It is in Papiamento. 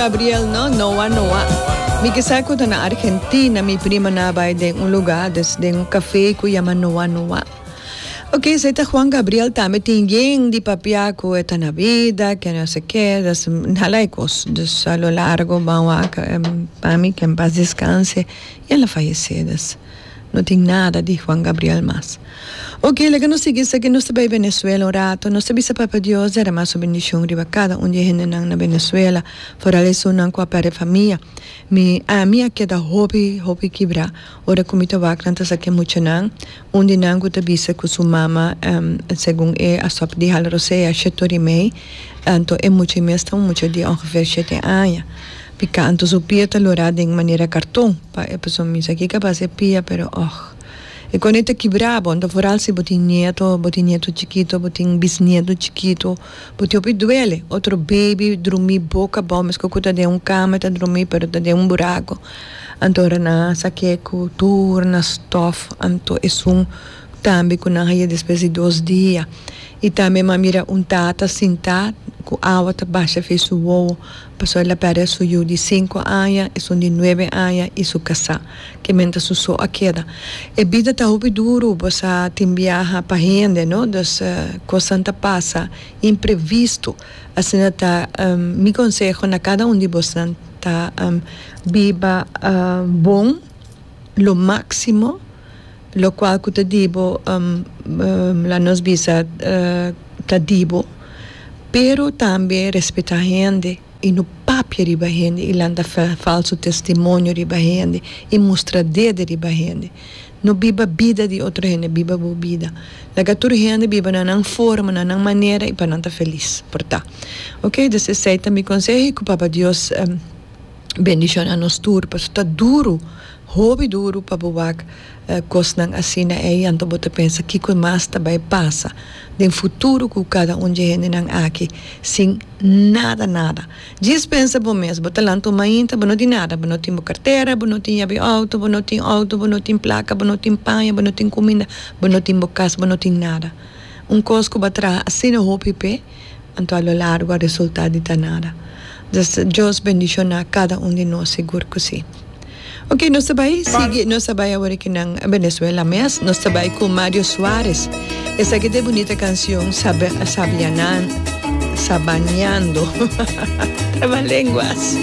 Gabriel no, Noa, Noa. Mi kisa ku ta na Argentina, mi primanan a bai den un lugá, des den un kafé ku yama Noa, Noa. Ok, esei ta Juan Gabriel tambe tin yen di papia ku e ta na bida, ke no se ke, des hala e kos. Dus a lo largo ban wak mami, ke en pas deskanse, i el a fayesé des. No tin nada di Juan Gabriel mas. Oke, laga nos sigui esaki, nos ta bai Venezuela un ratu. Nos ta bisa Papa Dios derama Su bendishon riba kada un di e hendenan na Venezuela, foral esunnan ku a perde famia. Mi, ami a keda hopi, hopi kibra ora ku mi ta wak nan ta sa ke muchanan. Un di nan ku ta bisa ku su mama, segun e, a stòp dihal rosea, shètò di mei. Anto e mucha i mes ta un mucha di ongeveer shete aña. Pika anto su pia ta lorá den manera karton. Pa e persoon misa aki ka bas e pia pero och. E kone ta kibra bon ta foral si bo tin nieto bo tin nieto chikito bo tin bisnieto chikito bo tin hopi duele otro baby drumi boka bo mesko ku ta den un kama ta drumi pero ta den un burako anto ora nan a sa ke ku tur na stof anto esun tambe ku nan a ye despues di dos dia i tambe mi a mira un tata sinta ku awa ta basha fe su wowo. Pasobra el a pèrdè su yu di sinku aña, esun di nuebe aña i su kasá, ke miéntras su so a keda. E bida ta hopi duru, bo sa, tin biaha pa hende, no? Dus, kosnan ta pasa imprevistu. Asina ta, mi konseho na kada un di bosnan ta, biba bon lo máksimo. Lo cual cu ta dibo la nos bisa ta dibo pero tambe respeta hende y no papia riba hende y lanta falso testimonio riba hende y mustra dede riba hende no biba bida di otro hende biba bo bida laga tur hende biba na nan forma na nan manera y pa nan ta feliz por ta ok dus esey ta mi conseho y cu papa Dios bendiciona nos tur pasobra ta duro. Hopi duru pa bo wak kosnan asina ei, anto bo ta pensa kiko mas ta bai pasa den futuro ku kada un dje hendenan aki sin nada nada. Djis pensa bo mes, bo ta lanta un mainta bo no tin nada, bo no tin bo kartera, bo no tin yabi outo, bo no tin outo, bo no tin plaka, bo no tin paña, bo no tin kuminda, bo no tin bo kas, bo no tin nada. Un kos ku bo a traha asina hopi p'e. Anto a lo largo a resultá di ta nada. Dios bendishoná kada un di nos, sigur ku si. Oke, nos ta bai sigui, nos ta bai awor aki nan Benezuela mes, nos ta bai ku Mario Suarez. Esaki ta e bunita kansion Sabe, Sabianan, Sabañando, Trabalenguas.